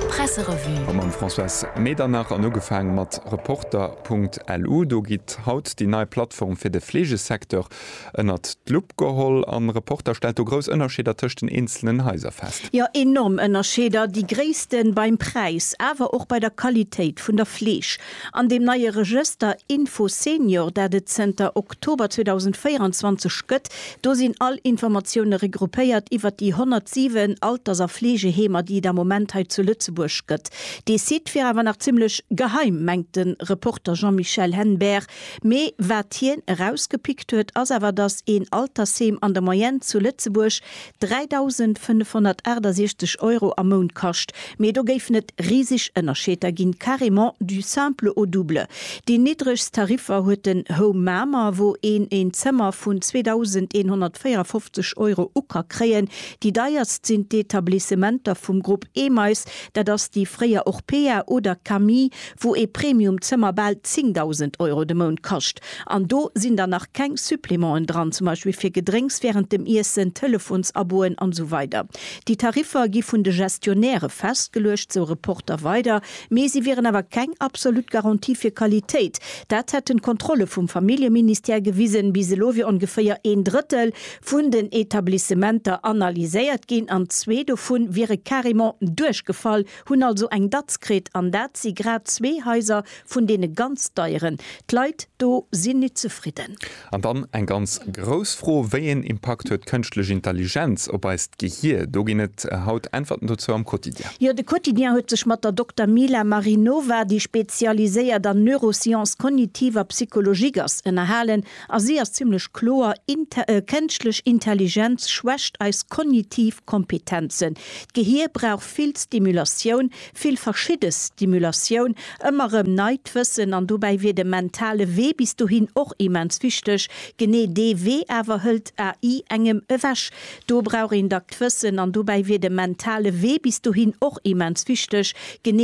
Presserevue Mam Françoise Medernach an ugefaang mat Reporter.lu. Do gitt haut déi nei Plattform fir de Fleegesecteur ënnert d'Lupp geholl. A Reporter stellt do grouss Ënnerscheeder tëscht den eenzelen Haiser fest. Jo, enorm Ënnerscheeder. Déi gréissten beim Präis, awer och bei der Qualitéit vun der Fleeg. An deem neie Regëster Infosenior, dat et zënter Oktober 2024 gëtt, do sinn all Informatioune regroupéiert iwwert déi 107 Alters a Fleegeheemer, déi et am Moment hei zu Lëtzebuerg gëtt. Dee Site wier awer nach zimmlech geheim, mengt de Reporter Jean-Michel Henbert. Mee wat hien erausgepickt huet, ass awer, datt een Altersheem an der Moyenne zu Lëtzebuerg 3.568 Euro am Mount kascht, mee do géifen et riseg Ënnerscheeder ginn, carrément du simple au double. Déi niddregst Tariffer huet den Home Mamer, wou een een Zëmmer vun 2.154 Euro u ka kréien. Déi deierst sinn d'Etablissementer vum Grupp Emeis, dat ass déi fréier Orpea oder Camille, wou ee Premium-Zëmmer bal 10.000 Euro de Mount kascht. An do sinn dann nach keng Supplémenten dran, zum Beispill fir Gedrénks während dem Iessen, Telefonsabon'en an esou weider. Déi Tariffer gi vun de Gestionnairë festgeluecht, esou Reporter weider, mee si wieren awer keng absolut Garantie fir Qualitéit. Dat hätten d'Kontrolle vum Familljeministère gewisen. Bis elo wier ongeféier een Drëttel vun den Etablissementer analyséiert ginn an zwee dovun wiere carrément duerchgefall. Hunn also eng Datz kritt, an dat si grad zwee Haiser vun deene ganz deieren. D'Leit do sinn nit zefridden. An dann eng ganz grouss Fro, Wéi een Impakt huet d'Kënschtlech Intelligenz op eist Gehier? Do ginn et haut Äntwerten dozou am Quotidien. Jo, de Quotidien huet sech mat der Dokter Mila Marinova, déi spezialiséiert an Neurosciences cognitives a Psychologiques ass, ënnerhalen. A si ass zimlech kloer, Kënschtlech Intelligenz schwächt eis kognitiv Kompetenzen. D'Gehier brauch vill Stimulatioun, vill verschidde Stimulatioun, ëmmer erëm neit Wëssen. An dobäi wier de mentale Wee bis dohin och immens wichteg. Genee dee Wee awer hëlt AI engem ewech. Do brauch een dackt Wëssen. An dobäi wier de mentale Wee bis dohin och immens wichteg. Genee.